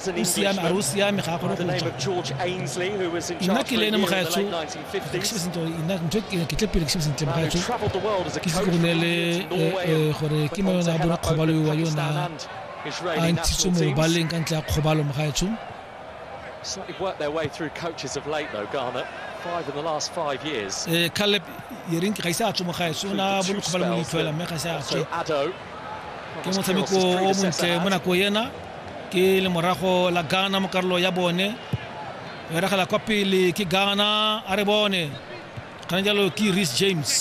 o siame a re o siame ga gore nna ke le ene mogaetsho nna ntho e ke tle pele ke shebe sentle mogaetsho ke se ke go neele eh, eh, gore ke mo yone a bone kgobalo yo wa yona a ntshitswe mo baleng ka ntle ya kgobalo mogaetsho Certainly worked their way through coaches of late, though, Garnet. Five in the last five years. Eh, Caleb, Yerin, ga ise a tswe mo gae, so na bo le kgobalo mo itlhoela, mme ga ise a tswe. Ke motshameko o montle mo nako ena. ke le morago la ghana mo karolo ya bone beragela kwa pele ke ghana a re bone kana jalo ke ris james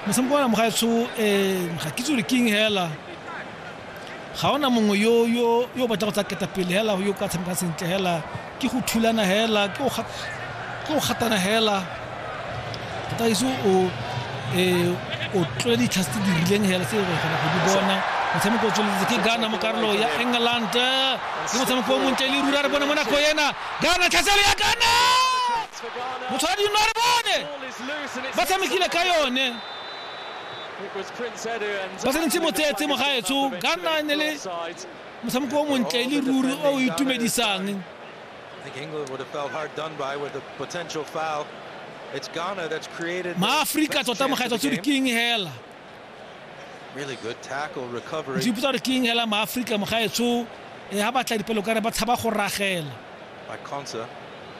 motshameko wa mogaetsho um eh, ga kitse gore king hela ga ona mongwe yo yo yo batla go tsa ketapele hela yo ka tshameka sentle hela ke go thulana hela ke go gatana hela taiso o e o tlole ditlhas tse di rileng hela tse re kgona go di bona motshameko o tsweletse ke ghana mo karolo ya england ke motshameko o montle le rura re bone mo nako ena ghana tlhaselo ya ghana motho wa dino re bone ba tshamekile ka yone ba tshwanetse motsetse mo gaetsho ghana e ne le motshameko o montle e le ruri o o itumedisang maaforika tota mogaetsa tse di king hela Really good tackle, recovery. Di putswa king hela ma Africa mo gaetsho e ha batla dipelo kare ba tshaba go ragela. By Consa.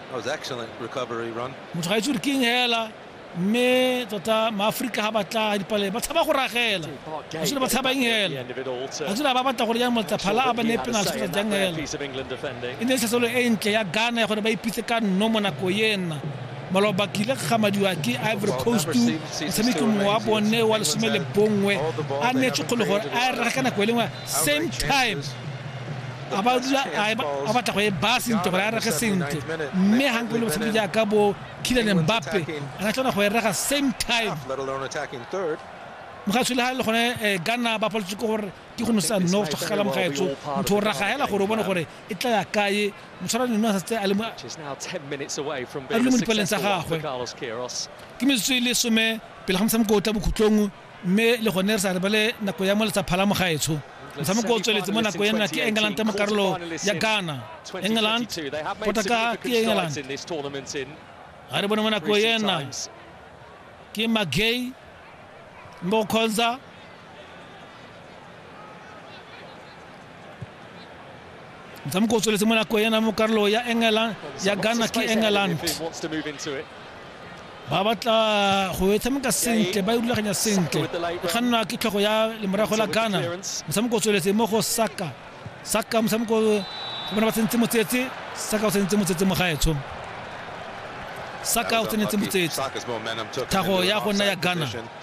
That was excellent recovery run. Motho gaetsho king hela mme tota maaforika ga batla dipalele ba tshaba go ragela actually ba tshabang hela actually ba batla gore yang motla phala a ba ne penalty fetsa jang hela e ne sesolo e ntle ya Ghana ya gore ba ipitse ka nno mo nako yena maloba ke ile gamadiwa ke ivory coast motshameki mongwe wa bone wa lesome le bongwe a neetse kgolo gore a e rega ka nako e lengwe same time a ba dula a batla go e baya sentle gore a rege sentle mme gankole motshameki jaaka bo Kylian Mbappe a ka tlona go e rega same time mogatshwi le ga e le gone eh, gana ba paletse ke gore ke go nosa no gala mogaetso motho o raga hela gore o bone gore e tla ya kae motshwara neno a setse a le mo dipeleng tsa gagwe ke metsotso e le some pele ga motshameko o tla bokhutlong mme le gone re sa rebele nako ya mo letsa phalamo gaetsho motshameko o tsweletse mo nako ena ke england mo karolo ya ghana england potaka ke england ga re bone mo nako ena ke magay mo kgonza motshameko o tsweletse mo nako ena mo karolo ya england ya ghana ke england ba batla go e tshameka sentle ba e rulaganya sentle ga nna ke tlhogo ya lemorago la ghana motshameko o tsweletse mo go saka saka motshameko bona ba tsentse motsetse saka o tsentse motsetse mo gaetsho saka o tsenetse motsetse thago ya go nna ya ghana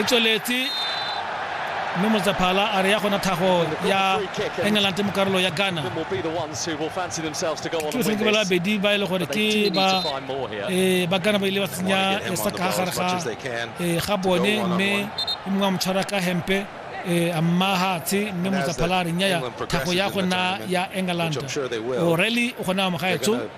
e tsweletse mme motsaphala a re ya gona thago ya england mo karolo ya ghana ke ba babedi ba e le gore ke ba eh, ba ghana ba ile ba tsenya eh, saka ga gare ga eh, ga bone mme e mongwe a mo tshwara ka hempe Eh, mahatshe mme motsaphalare nyaya thago ya gona ya england orally o gona amogaetso